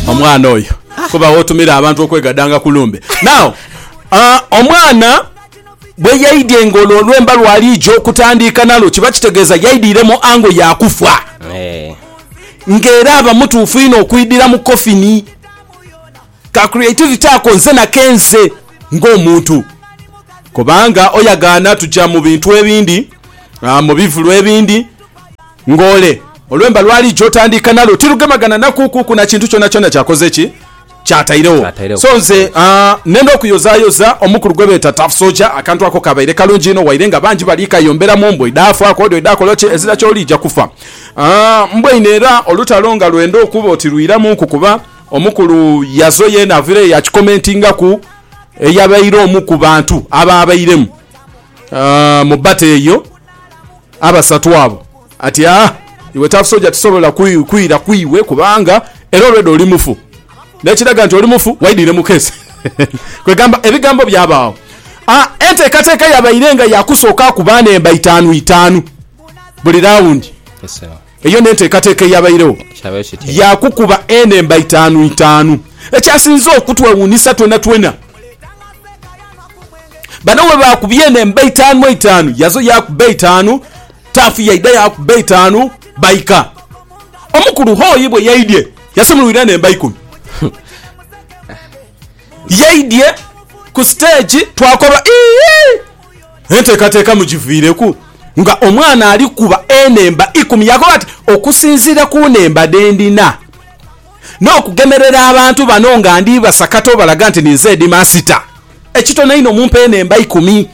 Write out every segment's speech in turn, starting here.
Omwana oyo kuba wotumira abantu okwegadanga ku lumbe. Now uh, omwana bwe yaidye nga olwo olwemba lwaliija okutandiika nalwo kiba kitegeeza yaidiire mu ango ya kufa eh. nga era aba mutuufu inho okwidira mu kofini. Ka creativity ako nze nakenze ng'omuntu kubanga oyagaana tuja mu bintu ebindi, uh, mu bivulu ebindi Ng'ole, olwemba lw'aliija otandiika nalwo tirugemagana na kuukuuku na kintu kyonakyona ky'akoze ki? Ky'atairegho. So nze, aa, nnenda okuyozaayoza omukulu gwe beeta Tough Soldier. Akantu ako kabaire kalungi inho, waire nga bangi bali kayomberamu. Mbwa edhaafa, akoodho edhaakola ki, ezira ky'oliija kufa. Aa, mbwa inho era olutalo nga lwenda okuba oti lwiramunku kuba omukulu yazo yeena avaireyo yakikomentingaku eyabaire omu ku bantu abaabairemu. Ah, mu bata eyo abasatu abo ati ah, iwe Tough Soldier tisobola kwi- kwira kwiwe kubanga era already oli mufu nekiraga nti oli mufu waidire mu kesi kwegamba ebigambo byabaawo Ah, enteekateeka yabaire nga yakusooka ku baana emba itaanu itaanu buli rawundi Yes, sir. Eyo n'enteekateeka eyabairegho ya kukuba enhemba itaanu itaanu. Ekyasinze okutwewuunhisa twenatwena, bano bwe baakubye enhemba itaanu itaanu, Yazo yaakuba eitaanu, Taafu yaidha yaakuba eitaanu, baika. Omukulu Hoyi bwe yaidhye yasimulwira enhemba ikumi. Yaidhye ku siteegi twakoba, Iihi! Enteekateeka mugiviireku nga omwana ali kukuba enhemba ikumi. Yaakoba ati, Okusinziira ku nhemba dhe ndina n'okugemerera abantu bano nga ndi basakata obalaga nti ninze Hedimaasita, ekitono inho mumpe enhemba ikumi.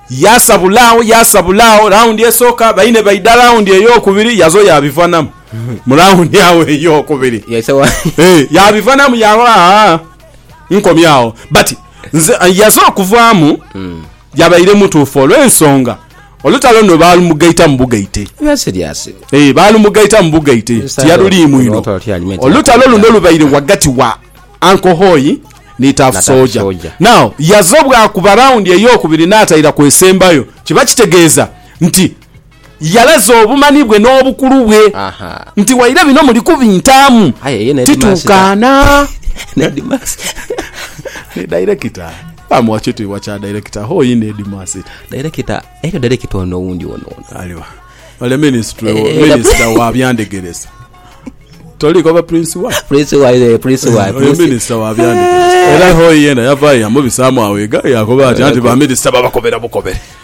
Yaasabula agho, yaasabula agho. Rawundi esooka baine baidha rawundi eyokubiri, yazo yaabivanhamu mu rawundi agho eyokubiri. Yaisegho. Ee, yaabivanamu yaagho, aa. nkomye agho but nze yaze okuvaamu hmm. yabaire mutuufu olw'ensonga olutalo no balumugaita mu bugaite eh, balumugaita mu bugaite tiyaluliimu ino olutalo luno lubaire wagati wa ankohoyi ni tafu soja now yaze obwakuba rawundi eyokubiri nataira kwesembayo kiba kitegeeza nti Yalaze obumanhi bwe n'obukulu bwe, nti waire bino muli kubintaamu, tituukaana. Ni dairekita. Baamuwa kitiibwa kya dairekita. Hoo inho Heedimaasita. Dairekita, eriyo dairekita ono owundi ono ono. Aliwa? Ole minisitule, eh, eh, minisita wa byandegeresa. Toliiko ba Prince wa? Prince wa, eh, Prince wa. Oyo minisita wa byandegeresa. Era hoo yena yavaayo yamubisaamu awo egaali yakoba ati anti ba minisita babakobera bukobere.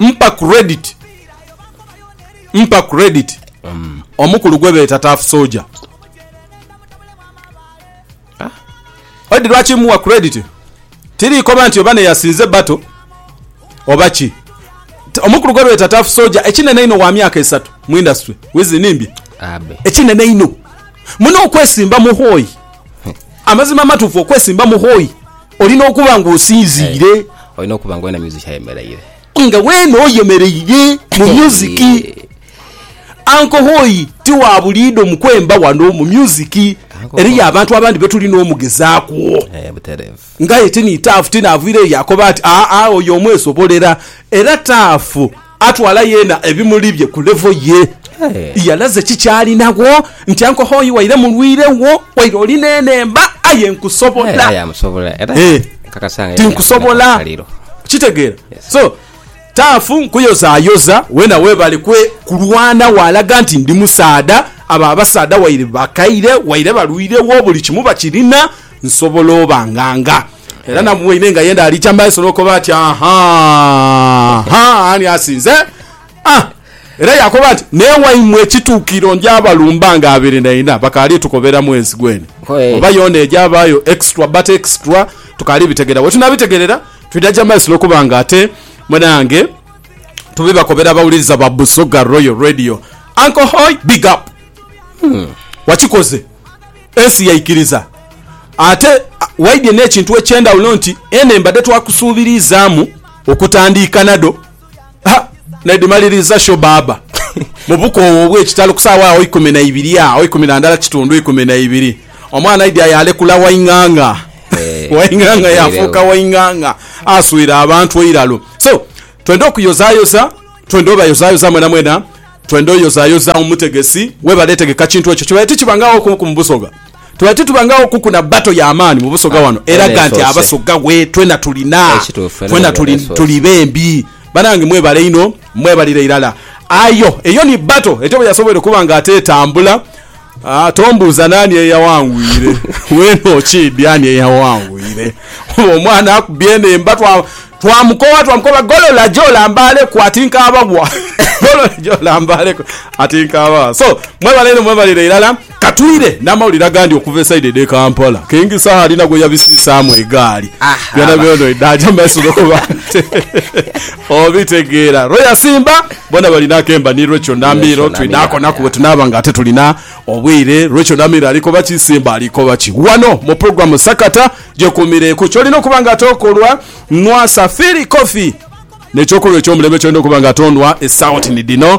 Mpa credit Mpa credit omukulu gwebeeta Tough Soldier. Odi lwaki muwa credit? Tirikoba nti oba neyasinze battle oba ki. T- Omukulu gwebeeta Tough Soldier ekinene einho wa myaka esatu mu industry. Wizi nimbye? Abe. Ekinene einho. Muno okwesimba muhoyi. Amazima amatuufu okwesimba muhoyi. Olina okuba nga osinziire. Olina okuba nga wena music ayemeraire. Nga wena oyemereire mu music. Anko Hoyi ti wa buliido mu kwemba wano mu music. Eriyo abantu abandi betulina omugezaaku. Eh, buterevu. Ngaye ti ni taafu ti naaviireyo yakoba ati, Aa, oyo omwesobolera. Era taafu. Atwala yeena ebimuli bye ku levo ye. Yalaze ki ky'alinagho nti anko hoi waire mulwire wo, waire oli n'enhemba, aye nkusobola. Tinkusobola. Okitegeera? So, taafu nkuyozaayoza, weena webale kulwana waalaga nti ndi musaadha. Abo abasaadha waire bakaire, waire balwire wo, buli kimu bakirina, nsobola obanganga. Era na mweine nga yenda alija maiso nokoba ati aha ha ani asinze ah. Era yakoba nti newaimwe ekitukiro nja balumba nga abiri naina bakali tukobera mwezi gweni oba yona eja bayo extra but extra tukali bitegera wetunabitegerera twida ja maiso nokuba nga ate munange tubibakobera abawuliriza ba Busoga Royal Radio Uncle Hoi big up wakikoze. Ensi yaikiriza. Ate waidye n'ekintu eky'endhawulo nti ene mbadde twakusuubiriizaamu okutandiika nado ha n'edhimaliriza sho baaba mu bukoowu obw'ekitalo ku saawa agho ikumi na ibiri agho ikumi na ndala kitundu ikumi na ibiri omwana aidya yaalekula Waing'ang'a. Waing'ang'a yaafuuka Waing'ang'a aswire abantu eiralo. So twende okuyozaayoza, twende obayozaayoza mwenamwena. Twenda oyozayoza omutegesi. Webale etegeka kintu ekyo kibaire tikibangagho kuku mu Busoga. Tubaire titubangagho kuku na battle ya maani mu Busoga wano eraga nti Abasoga we twena tulina. Twena tuli tuli bembi. Banange mwebale inho mwebalire irala. Ayo eyo ni battle etyo bweyasoboire okuba nga ate etambula. Aa, tombuuza naani eyawanguire, weena okiidhi ani eyawanguire. Oba omwana akubye enhemba, twa, twamukowa, twamukowa, golola gye olambaaleku, ati nkaabawa. Golola gye olambaaleku, ati nkaabawa. So, mwebale inho, mwebalire irala. Ka twire n'amawulire agandi okuva esaidi edh'e Kampala. Kingisa alina gwe yabisiisaamu egaali. Aha, Byona aba. byona oidha aja mu maiso n'okuba nti. Obitegeera lwe yasimba bona balina akemba ni lwekyo Namiiro twidhakonaku bwe tunaaba nga ate tulina obwire lwekyo Namiiro alikoba ki Simba alikoba ki wano mu pulogulamu Sakata gyekumireku kyolina okuba nga ate okolwa nwasa Philly Coffee nekyokulwa ekyomulembe kyolina okuba nga ate onwa esawoti ni dhino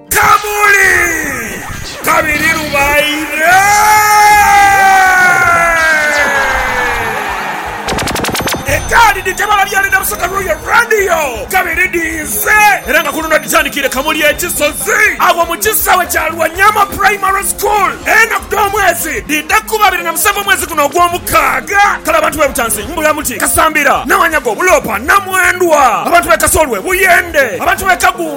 Kamuli! Kabiri lubaire! Ekaadi dhi tebala byali na busaka lw'oyo Radio. Kabiri dhiise era nga ku luno dhitandikiire Kamuli e Kisozi agho mu kisaawe kya Lwanyama Primary School. Enaku dh'omwezi dhiidha kuba abiri na musanvu omwezi guno ogw'omukaaga. Kale abantu b'e Butansi, Mbulamuti, Kasambira, Nawanyago, Buloopa, Namwendwa, abantu b'e Kasolwe, Buyende, abantu b'e Kagu,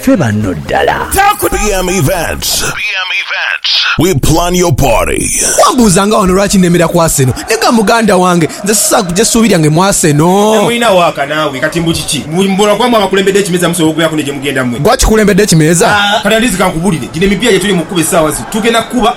Ffe banno ddala. BM Events, we plan your party. Wambuuza nga wano lwaki nemera ku Arsenal ne ga muganda wange nze sisobola kugya ssuubi lyange mu Arsenal. Mulina waaka naawe kati mbu kiki? Mbu buli muboolwa kwaamwe abakulembedde ekimeeza musobola okubeeraku ne gye mugenda mmwe? Gwe akikulembedde ekimeeza? Kati at least kankubulire, gino emipiira gye tuli mu kukuba essaawa zino tugenda kukuba.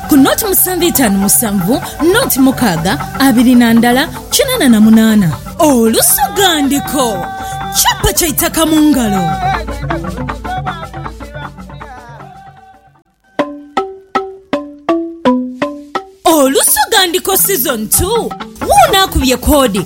ku noti musanvu itaanu musanvu, noti mukaaga abiri na ndala kinana na munaana. Olusoghandiko, Chapa kya itaka mu ngalo. Olusoghandiko Season 2, Wuuno akubye koodi.